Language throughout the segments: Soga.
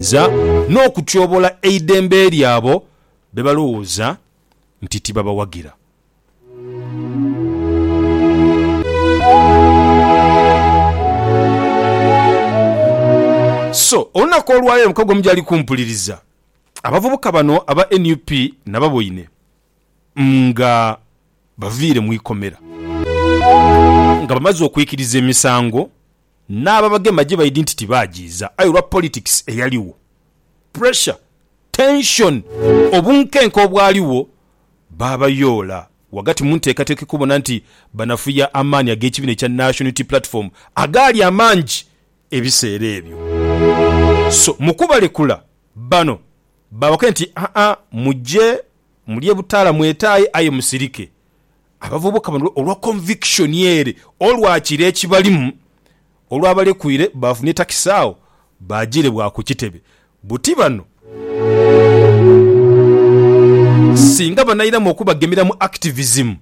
okukaluubiriza n'okutyobola eidembe ly'abo be balowooza nti tibabawagira. So, olunaku olwaleero omukago mujali kumpuliriza abavubuka bano aba nup nababoine nga baviire mu ikomera nga bamaze okwikiriza emisango N'ababagema gyebaidhi nti tibaagiiza aye olwa politics eyaligho, pressure, tension, obunkenke obwaligho baabayoola ghagati mu nteekateeka ekubona nti banafuya amaani ag'ekibiina ekya National Unity Platform agaali amangi ebiseera ebyo. So mu kubalekula, bano baabakubye nti, Haa muje mulye butaala mwetaaye aye musirike. Abavubuka bano olwa conviction ere olwa kiro ekibalimu olwabalekwiire baafunye takisi agho baajiire bwa ku kitebe buti bano singa banairamu okubagemera mu activism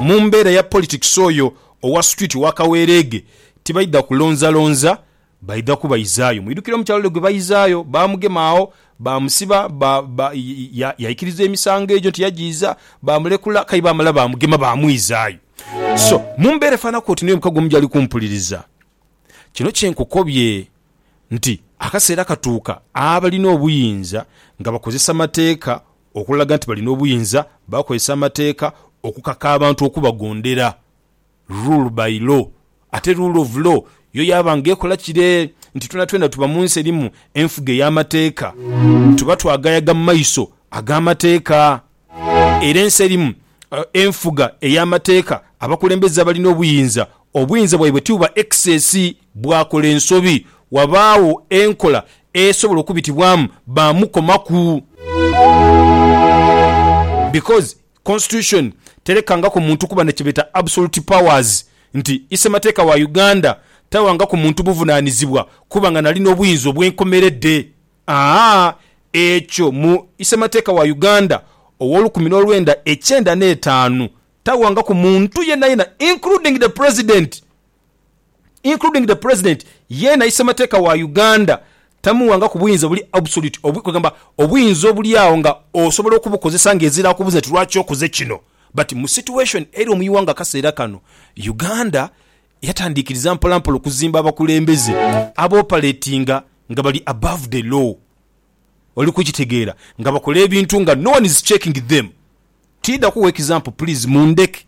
mu mbeera ya politics oyo owa street owa kaweereege tibaidha kulonzalonza Baidha kubaizaayo. Mwidhukire omukyala ole gwe baizaayo? Baamugema agho, baamusiba, ba, ba, ya, yaikiriza emisango egyo nti yagiiza, baamulekula, k'aye baamala baamugema, baamwizaayo. So, mu mbeera efaananaku oti n'oyo omukago omu gy'ali kumpuliriza, kino kye nkukobye nti, akaseera katuuka abalina obuyinza nga bakozesa mateeka okulaga nti balina obuyinza, bakozesa amateeka okukaka abantu okubagondera. rule by law, ate rule of law yo yaaba nga ekola kire nti twenatwena tuba mu nsi erimu enfuga ey'amateeka. Tuba twagayaga mu maiso ag'amateeka. Era ensi erimu enfuga ey'amateeka abakulembeze abali n'obuyinza, obuyinza bwaibwe tibuba excess. Bwakola ensobi, wabaagho enkola esobola okubitibwamu baamukomaku. Because Constitution telekangaku muntu kuba na kyebeeta absolute powers, nti Isemateeka wa Uganda tawangaku muntu buvunaanizibwa kuba nga nalina obuyinza obwenkomeredde. Aa ekyo mu Isemateeka wa Uganda ow'olukumi n'olwenda ekyenda n'etaanu tawangaku muntu yenayena including the President. including the President yeena isemateeka wa Uganda tamuwangaku buyinza buli absolute obwi kwegamba obuyinza obulyagho nga osobola okubukozesa nga ezira akubuza nti lwaki okoze kino but mu situation eri omu iwanga akaseera kano Uganda yatandikiriza mpolampola okuzimba abakulembeze aboperatinga nga bali above the law. oli kukitegeera nga bakola ebintu nga no one is checking them tidha kugha example please mundheke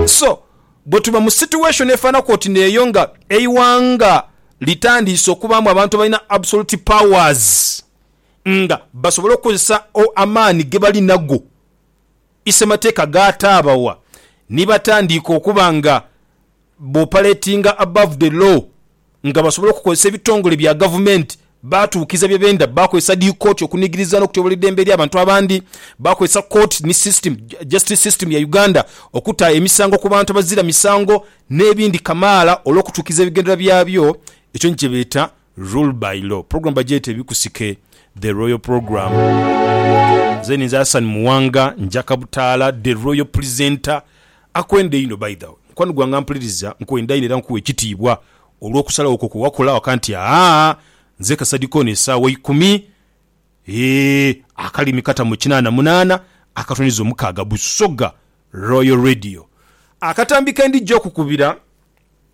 so bwetuba mu situation efanhaku oti neeyo nga eighanga litandiise okubaamu abantu abalina absolute powers nga basobole okukozesa amaani gebali nago Isemateeka gaataabawa ni batandiika okuba nga b'operatinga above the law nga basobola okukozesa ebitongole bya gavumenti baatuukiza bye benda, bakozesa dhi kooti okunigiriza n'okutyobola eidembe ely'abantu abandi, bakozesa kooti ni system, justice system ya Uganda okuta emisango ku bantu abazira misango n'ebindi kamaala olw'okutuukiza ebigendererwa byabyo, ekyo ni kye beeta Rule by Law, program bagyeta ebikusike, The Royal Program. Nze ninze Hassan Muwanga njaka butaala, The Royal Presenter. Akwenda einho by the way mukwano gwange ampuliriza, nkwenda inho era nkuwa ekitiibwa olw'okusalawo kwo kwe wakola waka nti aah nze Kasadikoni esaawa ikumi eeh akalimi kata mu kinaana munaana akatonyeza omukaaga Busoga Royal Radio. Akatambi ke ndija okukubira.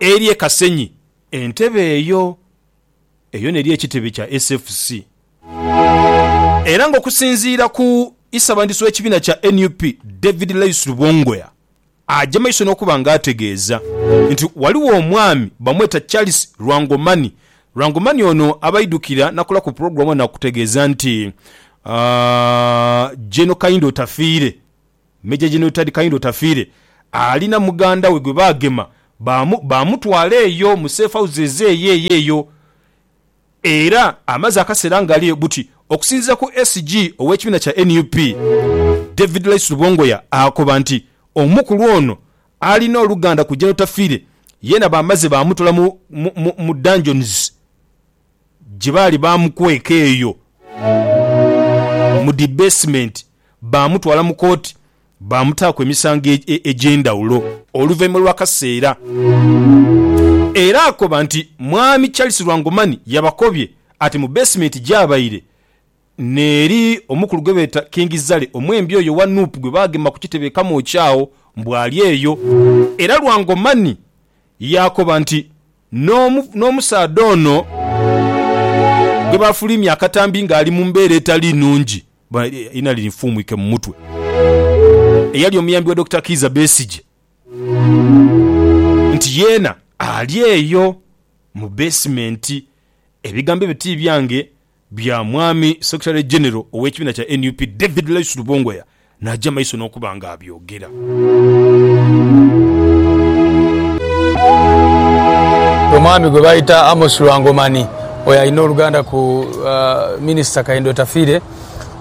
eri e Kasenyi. Entebe eyo eyo n'eri ekitebe kya SFC era nga okusinziira ku isabandiisi w'ekibiina kya nup David Laius Lubongoya aja maiso n'okuba nga ategeeza nti waliwo omwami bamweta Charles Lwangomani Lwangomani ono abaidukira nakola ku pulogulamu nakutegeeza nti Gen Kayindo Otafiire Major General Tad Kahinda Otafiire ali na muganda we gwe baagema baamu baamutwala eyo mu safe houses eyo eyo eyo era amaze akaseera ng'aliyo buti okusinziira ku SG ow'ekibiina kya nup, David Lyce Lubongoya akoba nti omukulu ono alina oluganda ku Gen Otafiire yeena baamaze baamutwala mu mu mu dungeons gye baali baamukweka eyo mu dhi beesimenti. baamutwala mu kooti baamutaaku emisango egy'endhawulo. Oluvainhuma lw'akaseera era akoba nti Mwami Charles Lwangomani yabakobye ati mu beesimenti gyabaire n'eri omukulu gwebeeta King Zale omwembi oyo owa Nup gwebaagema ku kitebe e Kamwokya agho mbu ali eyo. Era Lwangomani yaakoba nti n'omusaadha ono gwebaafuliimya akatambi ng'ali mu mbeera etali nnhungi. Irina linfuumuike mu mutwe. Eyali omuyambi wa Dokita Kiiza Besigye nti yeena ali eyo mu basement. Ebigambo ebyo ti byange, bya mwami Secretary General ow'ekibiina kya nup, David Laisu Lubongoya n'aja maiso n'okuba nga abyogera. gira. Omwami gwe bayita Amos Lwangomani oyo alina oluganda ku Minisita Kahinda Otafiire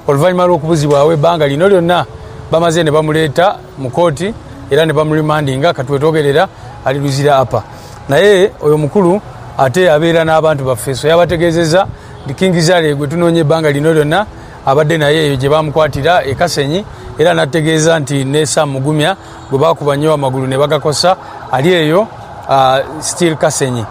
oluvannyuma lw'okubuzibwawo ebbanga lino lyonna bamaze ne bamuleeta mu kooti era ne bamurimandinga kati wetwogerera ali Luzira Upper naye oyo mukulu ate abeera n'abantu baffe so yabategeezezza nti King Zari gwe tunoonya ebbanga lino lyonna Abadde naye eyo gye baamukwatira e Kasenyi era n'atutegeeza nti ne Sam Mugumya gwe baakuba nnyo amagulu ne bagakosa ali eyo still Kasenyi.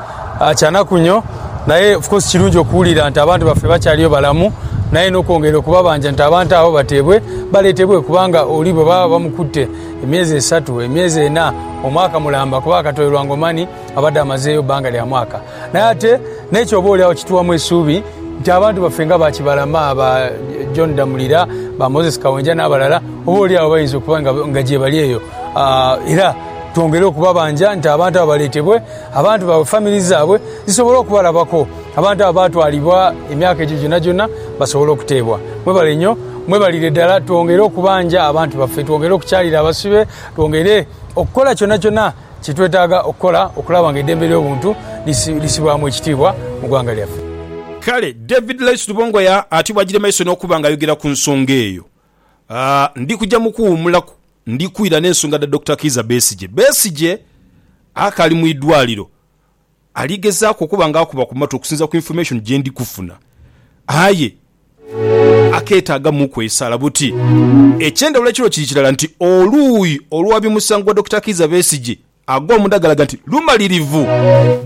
Kyanakunyo naye of course kirungi okuwulira nti abantu baffe bakyaliyo balamu naye n'okwongera okubabanja nti abantu abo bateebwe baleetebwe kubanga oli bwe baba bamukutte emyezi esatu, emyezi ena, omwaka mulamba kuba akatoirwa Ngomani abadde amazeeyo bbanga lya mwaka. Naye ate n'ekyo oboolyawo kituwamu esuubi nti abantu baffe nga ba Kibalama, ba John Damulira, ba Moses Kawenja n'abalala oboolyawo bayinza okuba nga gyebali eyo. Era twongere okubabanja nti abantu abo baleetebwe, abantu baabwe, famire zaabwe zisobole okubalabako. Abantu abo baatwalibwa emyaka egyo gyonagyona basobole okuteebwa. Mwebale nnyo. Mwebalire ddala. Twongere okubanja abantu baffe, twongere okukyalira abasibe, twongere okukola kyonakyona. kye twetaaga okukola okulaba nga eidembe ly'obuntu lisibwamu ekitiibwa mu ggwanga lyaffe. Kale David Lais Lubongoya ati bw'aidhire mu maiso n'okuba ng'ayogera ku nsonga eyo, Ndi kuja mu kuwuumulaku ndi kwira n'ensonga dha Dokita Kiiza Besigye. Besigye akaali mu idwaliro Ali gezaaku okuba nga akuba ku matu okusinza ku information gye ndi kufuna aye akeetaagamuuku esaala. Buti eky'endhawulo ekiriwo kiri kirala nti oluuyi oluwabi musango gwa Dokita Kiiza Besigye agwa omunda galaga nti lumalirivu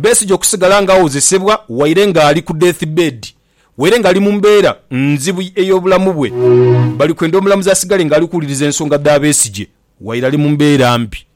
Besigye okusigala nga awozesebwa waire nga ali ku death bed waire nga ali mu mbeera nzibu ey'obulamu bwe. Bali kwenda omulamuzi asigale nga ali kuwuliriza ensonga dha Besigye waire ali mu mbeera mbi.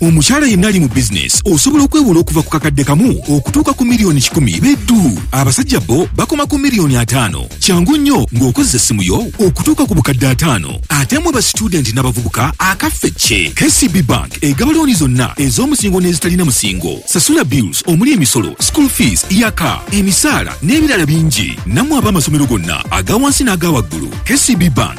Omukyala yenna ali mu bizinensi osobola okwewola okuva ku kakadde kamu okutuuka ku miliyoni kikumi be dhu. Abasajja bbo bakoma ku miliyoni ataano. Kyangu nnyo ng'okozesa essimu yo okutuuka ku bukadde ataano. Ate mmwe ba situdenti n'abavubuka akaffe kye! KCB Bank egaba looni zonna ez'omusingo n'ezitalina musingo. Sasula bills omuli emisolo, school fees, yaka, emisaala n'ebirala bingi. Nammwe ab'amasomero gonna aga wansi n'aga waggulu, KCB Bank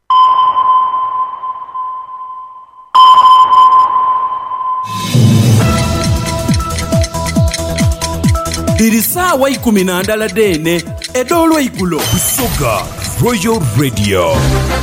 Dhiri saawa ikumi na ndala dheene edh'olweigulo. Busoga Royal Radio.